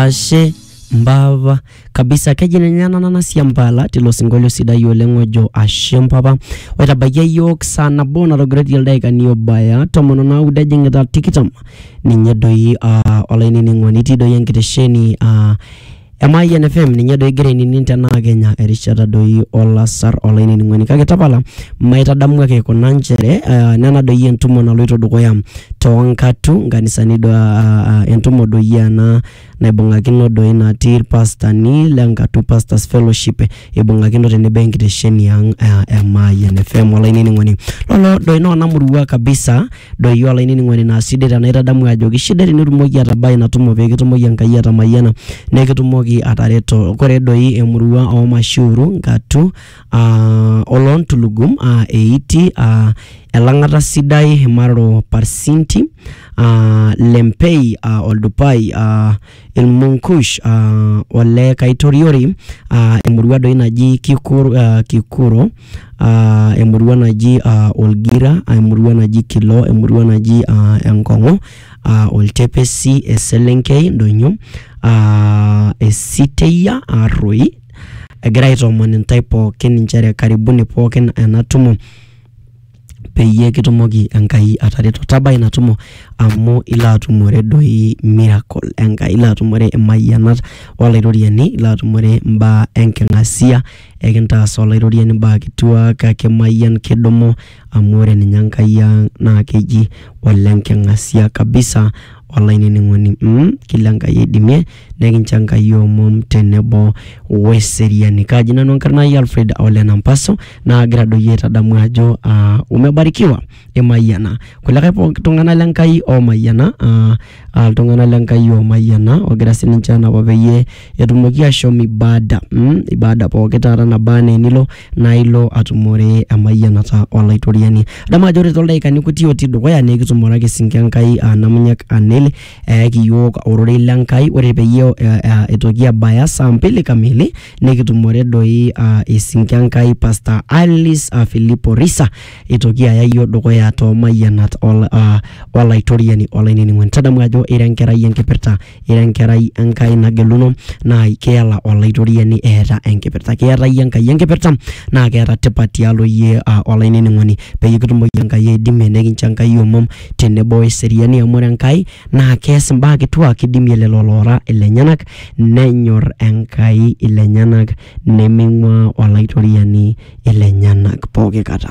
Ashe mpapa kabisa keji ninye ena nanasia mpala tilo sinkolio sidai oleng ojo ashe mpapa oitabaikia yiok saa nabo natogiroitie ildaikani obaya tomon onaudo ejing'ita tikitam ninye doi uh, olainining'oni itii doi enkitesheni uh, Emayian FM ninye doi igira ainining tenaa kenya erishata doi olasar olainining'oni kake tapala maitadamu ake kuna nchere uh, nena doi entumo naloito dukuya toonkatu nkanisani do, uh, entumo doi ena naibung'akino doi natii irpastani le nkatu pastors fellowship ibung'akino tenebo enkitesheni ang uh, e Mayian FM olainining'oni lolo doi naa onamurua kabisa doi olainining'oni naa sidai tenaitadamu ajoki sidai tenitumoki atabai ina tumo pee kitumoki Enkai atamayiana nekitumoki atareto kore doi emurua oo Mashiuru nkatu aa oloontulugum aa eiti aa elang'ata sidai imaroro parsinti aa lempei aa oldupai aa ilmunkush aa ole kaitoriori aa emurua doi naji kikur, aa kikuro aa emurua naji aa olgira aa emurua naji kilo emurua naji aa enkong'u aa oltepesi eselenkei indonyo aa esiteyia arroi. egira aitoomon intae pookin inchere karibuni pookin ena tumo peyie kitumoki Enkai atareto. Tabaa ina tumo amu ilo atumore doi miracle Enkai, ilo atumore imayianat Olairoriani, ilo atumore imbaa enking'asia, ekintaas Olairoriani imbaa kituak, kimayian, kidumu amu ore ninye Enkai ang' naa keji ole nking'asia kabisa olainining'oni mmh kila Enkai oidimie. nekinchangayie omom tenebo weseriani. Kaaji nanu enkarna ai Alfred Ole Nampaso naagira doi aitadamu ajo aa umebarikiwa imayiana kulikae pooki tung'anak le Nkai oomayiana aa aa iltung'anak le Nkai oomayiana oogira sininche aanapa peyie etumoki aashom ibada mm ibada pooki taata naba enaa enilo naa ilo atumore emayianata Olaitoriani. Adamu ajo ore toldaikani kuti otii dukuya naa ekitumore ake sii ninche Enkai aa Namunyak Aneli eyaki iyiook ororei le Nkai ore peyie eh, eh, itoki abaya saa mbili kamili nikitumore doi ah, esinki Enkai Pastor Alice ah, Filipo Risa itoki aya iyiook dukuya too mayianat ol- ah, olaitoriani olainining'oni tadamu ajo ira enkerai enkipirta ira enkerai Enkai nageluno naa keela olaitoriani eeta enkipirta keeta iyie Enkai enkipirta naa keeta tipat tialo iyie ah, olainining'oni peyie kitumoki Enkai aidimie nikincho Enkai omom tenebo o eseriani amu ore Enkai naa keas imbaa kituak eidimie lelo loora ilenyenak nenyor Enkai ilenyenak nemeing'uaa Olaitoriani ilenyenak pooki kata.